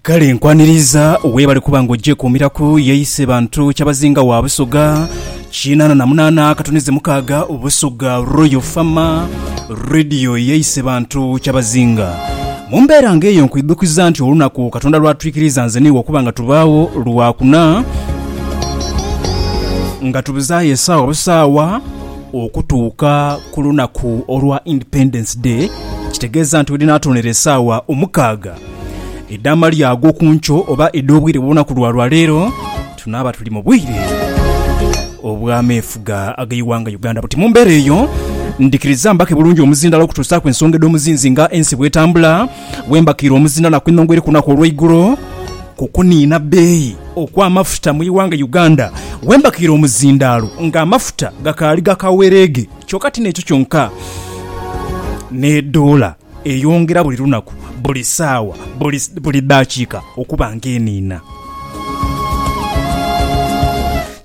Kale nkwaniriza webale kuba nga ogyekuumiraku yeise bantu kyabazinga wa Busoga kinaana na munaana akatunize mukaaga Busoga Royal Farmer Radio yeise bantu kyabazinga mu mbeera nga eyo nkwidhukiza nti olunaku Katonda lwatwikiriza nze niiwe okuba nga tubaawo lwakuna nga tubuzaayo esaawa busaawa Okutuuka ku lunaku olwa Independence Day kitegeeza nti wedinaatonera esaawa omukaaga edh'amalya ag'okunkyo oba edh'obwire bw'olunaku lwa lwaleero, tunaaba tuli mu bwire obw'ameefuga ag'eighanga Uganda. Buti mu mbeera eyo, ndhikiriza mbake bulungi omuzindaalo okutuusaaku ensonga edh'omuzinzi nga ensi bw'etambula, Bwe mbakiire omuzindha na kwinhongwa eri ku lunaku olweigulo ku kuniina bbeeyi okw'amafuta mu ighanga Uganda, bwe mbakiire omuzindaalo nga amafuta gakaali ga kawereege kyoka ti n'ekyo kyonka ne doola eyongera buli lunaku, buli saawa, buli daakiika okuba nga eniina.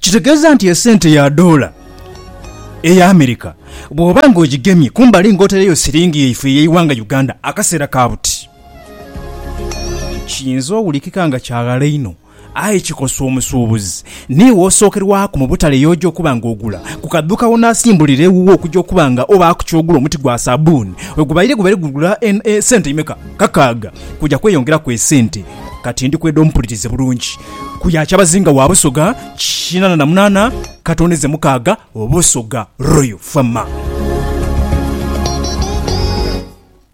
Kitegeeza nti esente ya doola Eyo America bw'oba nga ogigemye kumbali nga otaireyo siringi yaife ey'eighanga Uganda akaseera ka buti, kiyinza owulikika nga kya ghala inho aye kikosa omusuubuzi. Ni w'osookerwaku mu butale y'oja okuba nga ogula. Ku kadhuuka w'onaasimbulira ewuwo okuja okuba nga obaaku ky'ogula omuti gwa sabuuni wegubaire gubaire gugula sente imeka? Kakaaga. Kuja kweyongeraku esente. Kati ndi kweda ompulirize bulungi. Ku ya kyabazinga wa Busoga. Kinana na munana katondeze mukaga obusoga Royal Fama.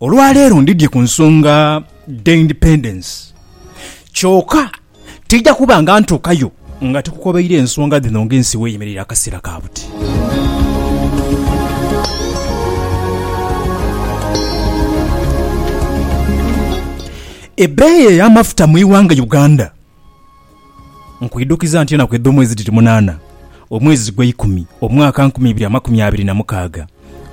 Olwaleero ndidye ku nsonga dhe independence kyoka tija kuba nga ntuukayo nga tikukobeire ensonga dhino nga ensi weyemereire akaseera ka buti. Ebeeyi eyamafuta mu iwanga Uganda Nkwidhukiza nti enaku edh'omwezi mwezi dhiri munaana, omwezi gweikumi, omwaka nkumi ibiri amakumi abiri na mukaaga,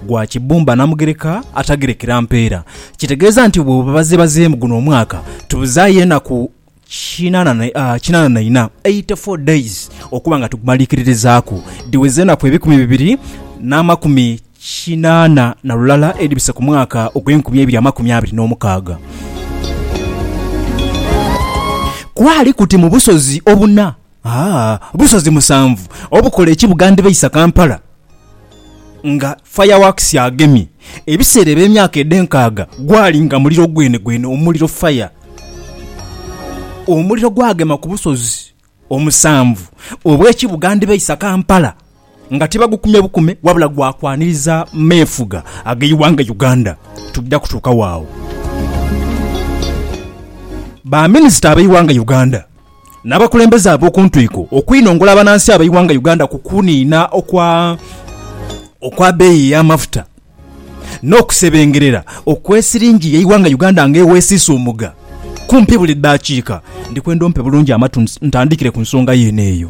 gwa Kibumba Namugereka Atagerekera Mpeera. Kitegeeza nti bwe babazebazeemu guno omwaka tubuzaayo enaku kinaana na ina, eighty-four days, okuba nga tugumaliikiririzaaku. Dhiweza enaku ebikumi bibiri n'amakumi. kinaana na lulala edhibise ku mwaka ogw'enkumi eibiri amakumi abiri n'omukaaga. Kwali kuti mu busozi obuna, aa, busozi musanvu obukola ekibuga ndhibaisa Kampala nga fireworks agemye. Ebiseera eby'emyaka edh'enkaaga gwali nga muliro gwenegwene, omuliro, fire. Omuliro gwagema ku busozi omusanvu obw'ekibuga ndhibaisa Kampala nga tibagukumye bukume wabula gwa kwaniriza meefuga ag'eighanga Uganda. Tujja kutuukawo agho. Baminisita ab'eighanga Uganda n'abakulembeze ab'oku ntwiko okwinongola abanansi ab'eighanga Uganda ku kuniina okwa beeyi y'amafuta. n'okusebengerera okw'esiringi y'eighanga Uganda nga ewesiisuumuga kumpi buli daakiika. Ndi kwenda ompe bulungi amatu ntandikire ku nsonga yeene eyo.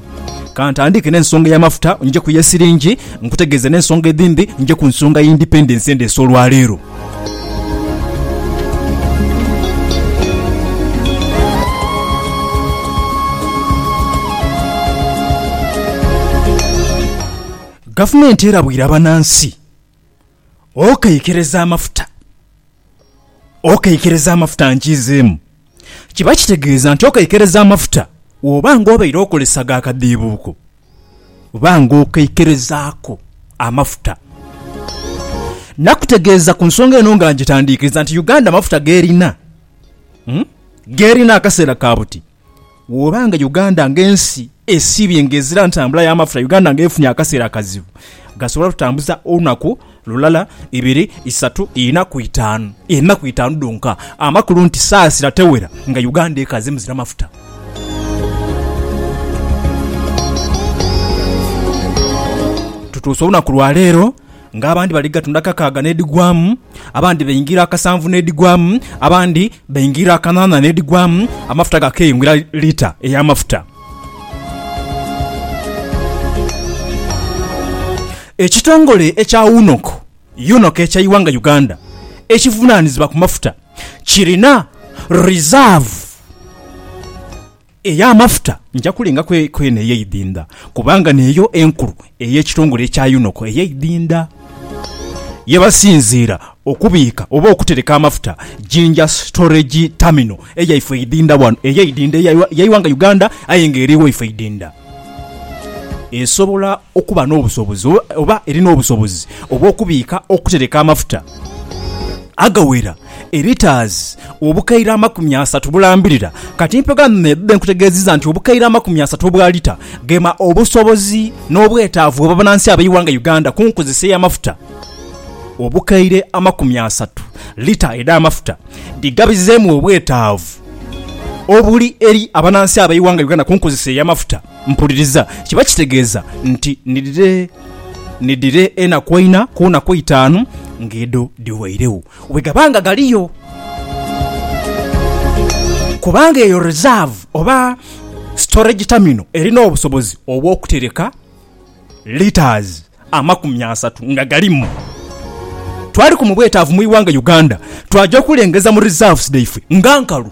Ka ntandike n'ensonga ey'amafuta nje ku y'esiringi nkutegeeze n'ensonga edhindi nje ku nsonga y'indipendensi endeese olwaleero. Gavumenti erabwira banansi Okeikiriza amafuta, okeikiriza amafuta nkiizeemu. Kiba kitegeeza nti okeikiriza amafuta woba nga obaire okozesa ga kadhiibuuko, ba nga okeikirizaaku amafuta. Nakutegeeza ku nsonga eno nga ngitandiikiriza nti Uganda amafuta g'erina, g'erina akaseera ka buti. Woba nga Uganda nga ensi esibye nga ezira ntambula ya mafuta Uganda nga efunye akasera akazibu gasobola tutambuza olunaku lulala ibiri isatu ina ku itanu enaku itanu dhonka amakulu nti sasira tewera nga Uganda ekaze muzira mafuta. Tutuuse olunaku lwa leero. Ng'abandi bali gatunda kakaaga n'edhigwamu, abandi baingira akasanvu n'edhigwamu, abandi baingira kanaana n'edhigwamu, amafuta gakeyongera lita ey'amafuta. Ekitongole ekya UNOC, UNOC eky'eighanga Uganda ekivunaanizibwa ku mafuta kirina rizavu. Ey'amafuta nja kulengaku kwene ey'eidinda, kubanga n'eyo enkulu ey'ekitongole ekya yunoko ey'eidinda ye basinziira okubiika oba okutereka amafuta, Jinja Storage Terminal eyaifo eidinda ghano, ey'eidinda eya iwanga Uganda aye nga eri waifo eidinda, esobola okuba n'obusobozi oba erina obusobozi obw'okubiika, okutereka amafuta agawera. Eritaazi obukaire amakumi asatu bulambirira kati mpegho ame me bube nkutegeeziza nti obukaire amakumi asatu obwa lita gema obusobozi n'obwetaavu bw'abanansi ab'eighanga Uganda ku nkozesa ey'amafuta. Obukaire amakumi asatu lita edh'amafuta dhigabizeemu obwetaavu obuli eri abanansi ab'eighanga Uganda ku nkozesa ey'amafuta mpuliriza kiba kitegeeza nti nidhire nidhire enaku eina ku naku eitaanu ng'edho dhiweiregho. Bwe gaba nga galiyo. Kubanga eyo reserve oba storage terminal erina obusobozi obw'okutereka litres amakumi asatu nga galimu. Twaliku mu bwetaavu mu ighanga Uganda, twaja okulengeza mu reserves dhaifwe nga nkalu.